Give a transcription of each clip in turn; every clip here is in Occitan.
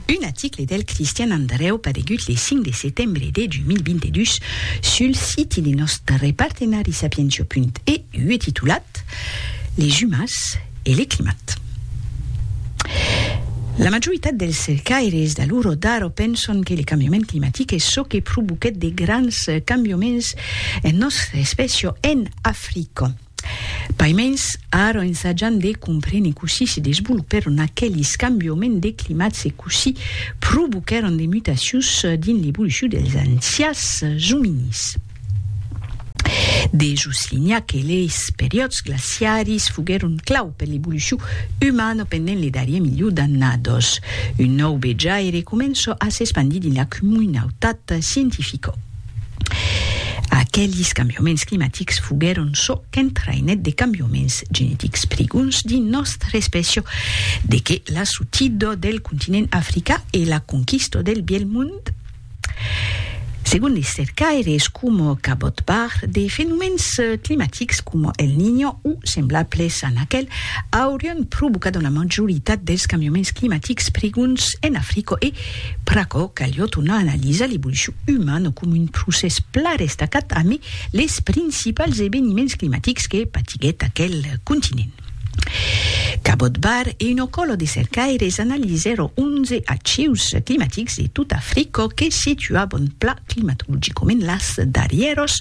Un aticle del Cristian Andrèu paregut le 5 de setembre de 2022 sul siti de nòstre partenari Sapientio.eu e titulat Les umas e le climat. La majoritat dels cercaires d'Aluro d'Aro penson que le cambiament climatic es çò que provoquèt de grands cambiaments en nòstre espècia en Africa. Paimens, ara ensajam de comprene cossí se desvolopèron aquelis cambioments de climats e cossí provoquèron de mutacions dins l'evolucion dels ancians ominís. De soslinhar que leis periòds glaciaris foguèron clau per l'evolucion umana pendent le darrier miliu d'annadas. Un nòu vejaire comença a s'espandir dins la comunautat scientifica. Aquelis cambiaments climatics foguèron çò qu'entraïnèt de cambiaments genetics prigons dins nòstra espècia, de que la sotida del continent africà e la conquista del Bièlh Mond. Segon de cercaires coma Cabot Barr, de fenomèns climatics coma El Niño o semblables a aquel aurián provocat una majoritat dels cambiaments climatics prigons en Africa e pr'aquò caliot una analisa l'evolucion umana coma un procès plan estacat amé les principals eveniments climatics que patiguèt aquel continent. Cabot Barr e una còla de cercaires analizèro 11 acius climatics de tota Africa que situaban plan climatologicament las darrièros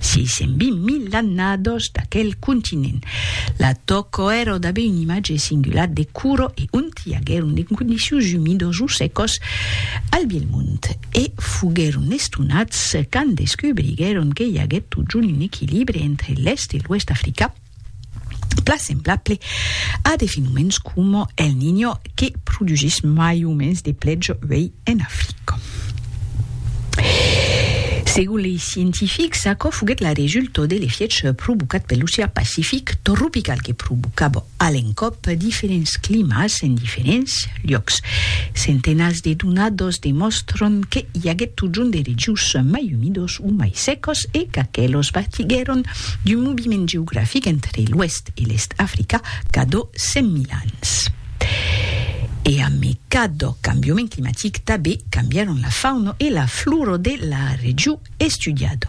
620.000 annadas d'aquel continent. La tòca èra d'aver un imatge singular de cura e ont i aguèron de condicions umidas o secas al bielh mond. e foguèron estonats quand descubriguèron que i aguèt totjorn un equilibre entre l'Èst e l'Oèst d'Africa, plan semblable a de fenomèns coma El Niño que produsís mai o mens de plètz uèi en Africa. Segon lei scientifics, aquò foguèt la resulta de l'efiech provocat per l'ocean Pacific tropical que provocava a l'encòp diferents climas en diferents luòcs. Centenats de donados demòstran que i aguèt totjorn de regius mai umidos o mai secos e qu'aquelos partiguèron d'un moviment geografic entre l'oèst e l'èst africà cadò 100.000 ans. E amé cadò cambiament climatic, tabé cambièron la fauna e la flora de la regiu. estudiat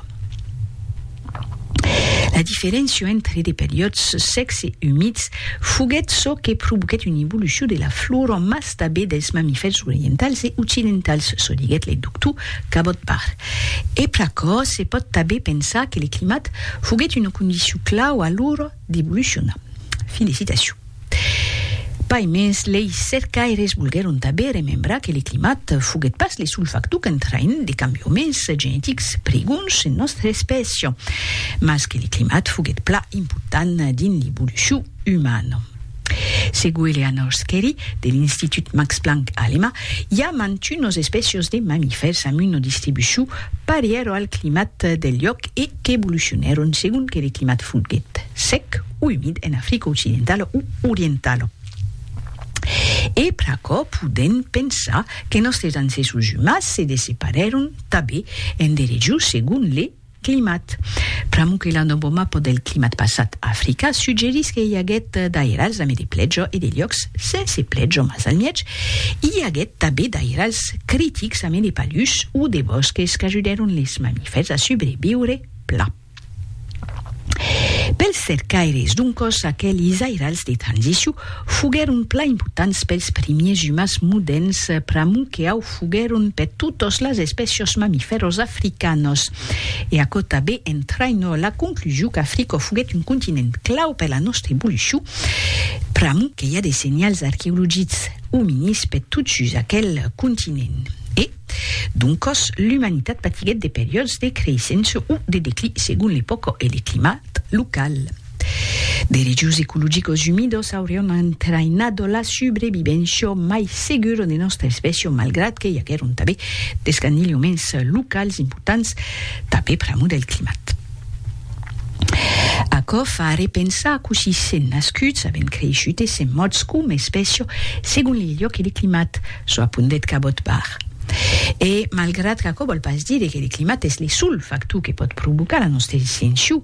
la diferéncia entre de periòds sècs e umids foguèt çò que provoquèt una evolucion de la flora mas tanben dels mamifèrs orientals e occidentals, çò diguèt le doctor Cabot Barr. E pr'aquò se pòt tanben pensar que le climat foguèt una condicion clau a l'ora d'evolucionar. Fin de citacion. Pas mens, lei cercaires volguèron tanben remembrar que le climat foguèt pas le sol factor qu'entraïn de cambioments genetics pregons en nòstra espècia, mas que le climat foguèt pla important dins l'evolucion umana. Segon Eleanor Skerry, de l'Institut Max Planck alema, i a mantunos espècias de mamifèrs amb una distribucion parièra al climat del lhòc e qu'evolucionèron segon que le climat foguèt sec umid en Africa occidentala o orientala. E pr'aquò podèm pensar que nòstres ancèssos umans se desseparèron tanben en de regions segon le climat. Pr'amor que la nòva mapa del climat passat a Africa suggerís que i aguèt d'airals amé de plèja e de luòcs sense plèja mas al mièg i aguèt tanben d'airals critics amé de palhus o de bòsques qu'ajudèron les mamifèrs a subreviure plan. Pels cercaires d'un còs aquelis airals de transiciu foguèron plan importants pels primiers umans modèrns pr'amor que au foguèron per totas las espècias mamifèras africanas. E aquò tanben entraina la conclusion qu'Africa foguèt un continent clau per la nòstra evolucion pr'amor que i a de senhals arqueologics ominids per tot sus aquel continent. E. Doncòs, l'umanitat patiguèt de periòds de creissenç o de declí segon l'epòca e le climat local. De regius ecologicos umidos aurián entraïnado la subrevivéncia mai segura de nòstra espècia malgrat que i aguèron tanben d'escandilhoments locals importants tanben pr'amor del climat. Aquò fa arrepensar cossí sèn nascuts, avèn creishut e sèn mòrts coma espècia segon le luòc e le climat. çò apondèt Cabot Barr. E, malgrat qu'aquò vòl pas dire que le climat es le sol factor que pòt provocar la nòsta extincion,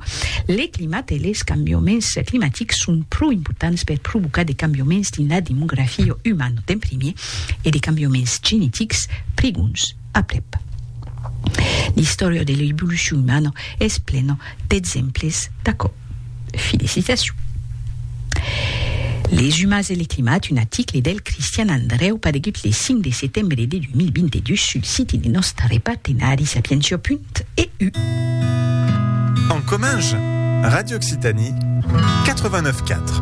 le climat e les cambiaments climatics son pro importants per provocar de cambiaments dins la demografia umana d'en primièr e de cambiaments genetics prigons aprèp. L'istòria de l'evolucion umana es plena d'exemples d'aquò. Felicitacion. Les umans e le climat, un aticle del Cristian Andrèu paregut le 5 de setembre de 2022 sul siti de nòste repartenari sapientia.eu. En Comminges, Radio Occitanie 89.4.